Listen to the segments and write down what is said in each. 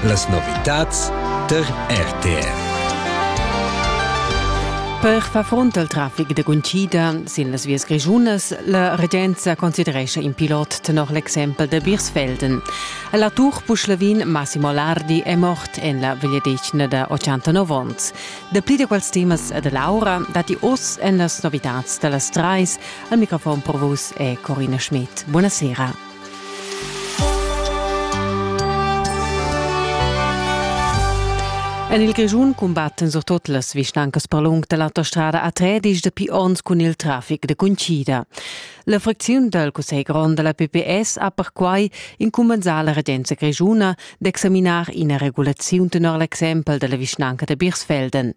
Las novitads tar RTR. Per far front al traffic da guntgida sin las vias grischunas, la regenza considerescha in pilot tenor l'exempel da Birsfelden. La Tour Puschlavin Massimo Lardi è mort en la vegliadetgna da 89 onns. Dapli da quels temas da Laura datti oz en las novitads da las trais. Al microfon per vus è Corina Schmidt. Buonasera. En il Grischun cumbatten surtut las vischnancas per lung da l'autostrada A3 dis dapi onns cun il traffic de Cuncida. La fracziun dal Cussegl grond da la PPS ha perquai incumbensà la regenza grischuna d'examinar ina regulaziun tenor l'exempel della vischnanca de Birsfelden.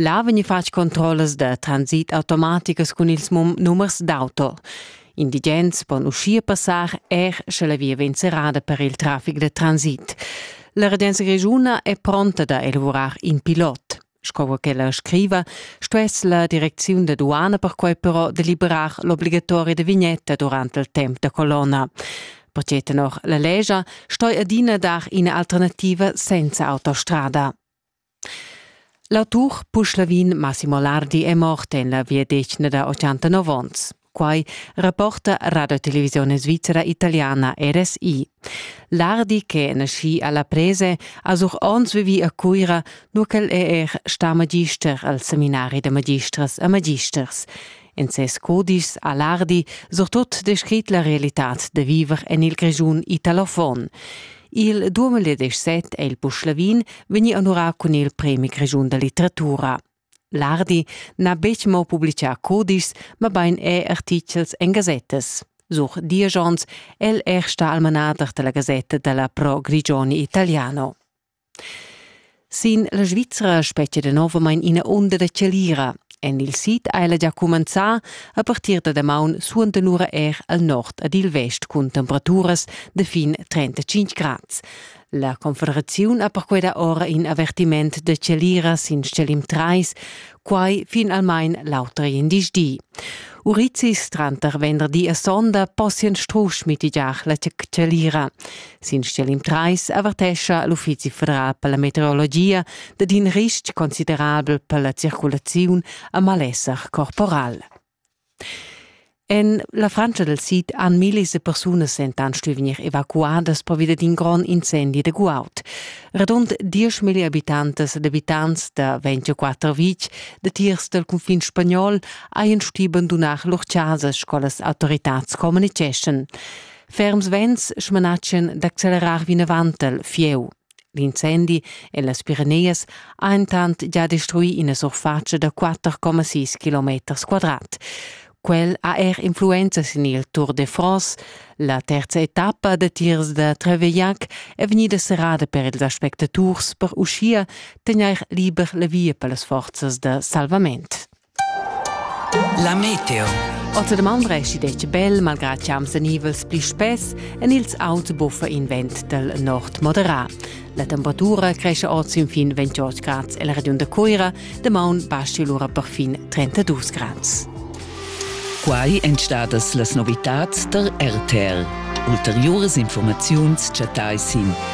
Là vegn fatg controllas da transit automaticas cun ils numers d'auto. Indigens pon uschia passar er sche la via vegn serrada per il traffic da transit. La regenza grischuna è pronta da elavurar in pilot. Sco ch'ella scriva, stuess la direcziun da duana perquai però deliberar l'obligatoria da vignetta durant il temp da colonna. Pertge tenor la legia stoi adina dar ina alternativa senza autostrada. L'autur puschlavin Massimo Lardi è mort en la viadetgna da 89 onns. Quai rapporta Radio Televisione Svizzera Italiana RSI. Lardi, che è nascì a La Prese, ha sur onns vivì a Cuira, nur ch'el è er stà magister al seminari da magistras e magisters. En ses cudischs a l'Ardi surtut descrit la realitad da viver en il Grischun italofon. Il 2017 è il Puschlavin vegnì onurà cun il Premi Grischun da litteratura. L'Ardi n'ha betg mo publicà cudischs, mabain è artichels en gasettas. Sur diesch onns è el er stà almanader da la gasetta della Pro Grigioni Italiano. Sin la Svizra spetgia danovamain ina unda da chalira. En il sid ha ella gia cumenzà a partir da damaun suenter lura er al nord ed il vest cun temperaturas da fin 35 grads. La Confederaziun ha perquai da ora in avertiment da chalira sin stgalim 3, quai finalmain l'auter indice di. Urizis tranter venderdi e sonda possian strusch mitigiar la tschelira. Sin stgelim 3 avertescha l'Uffizi federal per la meteorologia dad in ristg considerabel per la circulaziun a malesser corporal. En la Frantscha dal sid han millis da persunas dentant stuì vegnir evacuadas pervia d'in grond incendi da guaud. Radund dieschmilli abitantas ed abitants da 24 vitg datiers dal cunfin spagnol hajan stuì bandunar lur chasas sco las autoritads communitgeschan. Ferms vents smanatschan d'accelerar vinavant al fieu. L'incendi en las Pireneas ha entant già destruì ina surfatscha da 4,6 km quadrat. Quel ha er influenza sin il Tour de France. La terza etappa da tirs da Trevellac è vegnida serrada per ils aspectaturs per uschia tegnair liber la via per las forzas da salvament. La meteo. Otterdam Andresi detg bel, malgrad chiams en ivels pli spess, en ils auts buffa in vent del nord moderat. La temperatura cresce ord sin fin 28 grad e la regiun da Coira de maun basci lura per fin 32 grad. Quai èn stadas las novitads der RTL. Ulteriuras informaziuns chattai sin